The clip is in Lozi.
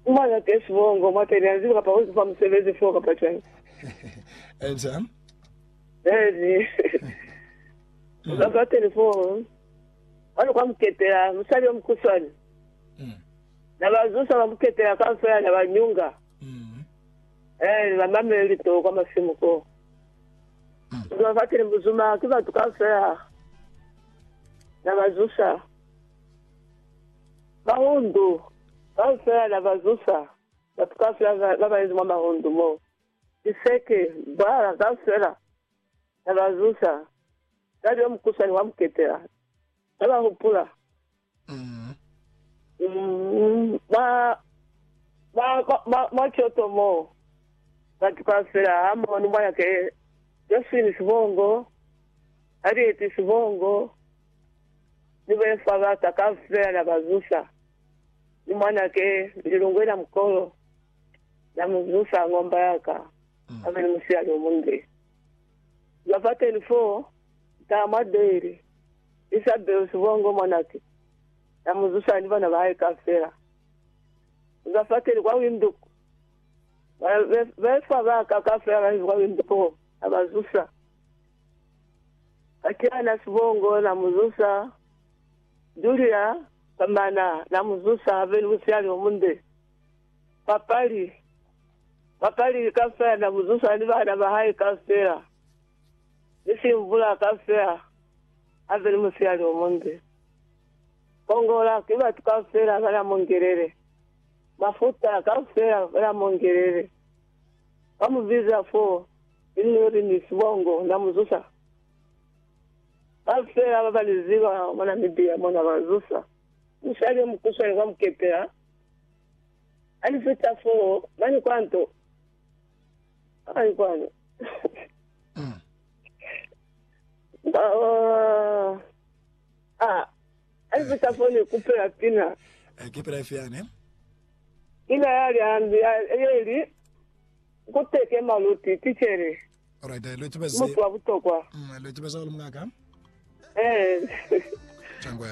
Kuma za ke sibongo, mwa ke nia ziba kapa uzifa musebezi foo kapa cwani. Eza. Ezi. Uza kwa keni foo. Kwani kwa muketela, musali yo mukuswani. Mm. Na ba zusa ba muketela kwa mfela na ba nyunga. Mm. Eh, ba mamele lito kwa masimu ko. Mm. Uza kwa keni muzuma, kiba tuka mfela. Na ba zusa. Mahundu, Kaufela na ba zusa, batu kaufela ba ba inzi mwa mahundu mo. Liseke, Bwala kaufela na ba zusa, Nsali yo mukusani wa muketela, na ba hupula. Mwa, mwa, mwa, mwa coto mo, batu kaufela ha mu boni mwanake Josephine Sibongo, Harriet Sibongo. ni be fa baka kaufela na ba zusa, ni mwanake lilungwe la mukolo na mu zusa ngomba ya ka, abe ni musiali o munde. Zwa fateni fo, nta mwa Doyle, Isabel Sibongo mwanake, na mu zusa ni bana ba hae kaufela. Zwa fateni kwa Windhoek, ba be fa baka kaufela ba kwa Windhoek, na ba zusa. Katiana Sibongo na mu zusa, Julia Kamana na mu zusa a be ni musiyali o munde. Papali, papali kaufela na mu zusa ni bana ba hae kaufela, ni Simbula kaufela a be ni musiyali o munde. Kongola ki batu kaufela ba na mu ngelele, Mafuta kaufela ba na mu ngelele. Ba mu biza fo linlori ni sibongo na mu zusa. Ba feela ba ba ni ziba mwa Namibia mona ba zusa. Musali yo mukuswani kwa mukepela a ni fita fo mani kwa nto. Ai kwanu. Ba, ah, Hali ku sa koni ku pela pina. Eh, ki pila ifi yani? Pina ya liambi ya, ye li, Ku tekema luti, ticele. Alright, eh, lu tubezi. Mutu wa butokwa. Mm, lu tubeza ulu mungaka. Eh. Changwe.